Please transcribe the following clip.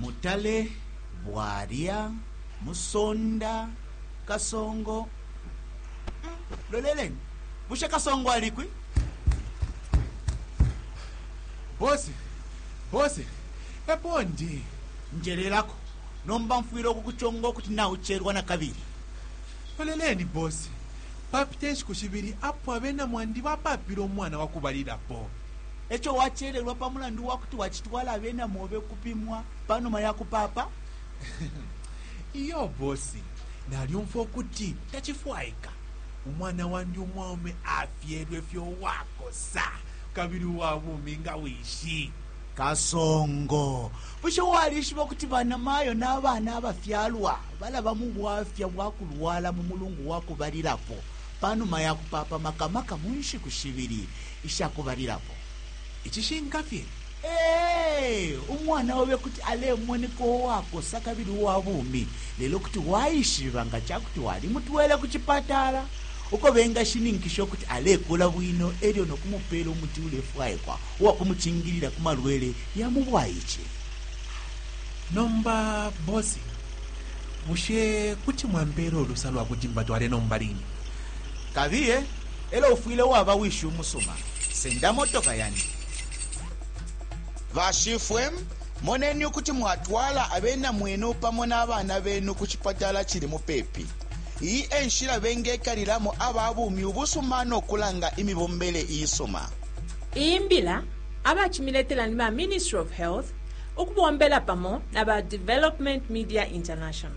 Mutale, Bwalya, Musonda, Kasongo, mm, loleleni bushe Kasongo alikwi? Bose, bose, epo ndi. Njelelako, nomba mfwile ukukuchonga ukuti naucherwa na kabili. Loleleni bose, papite nshiku shibili apo abena mwandi bapapile umwana wakubalilapo. E co wacelelwa pa mulandu wa kuti wacitwala abena mobe ukupimwa pa numa ya kupaapa? Iyo bosi, nalyumfwa ukuti tacifwaika umwana wandi umwaume afyelwe fye uwakosa kabili uwa bumi nga wishi. Kasongo, bushe walishiba ukuti banamayo na bana abafyalwa balaba mu bwafya bwa kulwala mu mulungu wa kubalilapo pa numa ya kupaapa, maka maka mu nshiku shibili Ica kubalilapo, icishinka fye, ee, umwana obe kuti alemoneka uwakosa kabili uwa bumi, lelo kuti waishiba nga ca kuti walimutwele ku cipatala uko bengashininkisha ukuti alekula bwino e lyo no kumupeela umuti ulefwaikwa uwa kumucingilila ku malwele ya mu bwaice. Nomba bosi, bushe kuti mwampeela ulusa lwa kuti mbatwale nomba line? Kabiye. elo ufwile waba wishi umusuma. Senda motoka yandi. Bashifwe, moneni ukuti mwatwala abena mwenu pamo na bana benu ku cipatala cili mupepi. Iyi e nshila bengekalilamo aba bumi ubusuma no kulanga imibombele isuma. Iyi mbila abacimiletela ni ba Ministry of Health ukubombela pamo na ba Development Media International.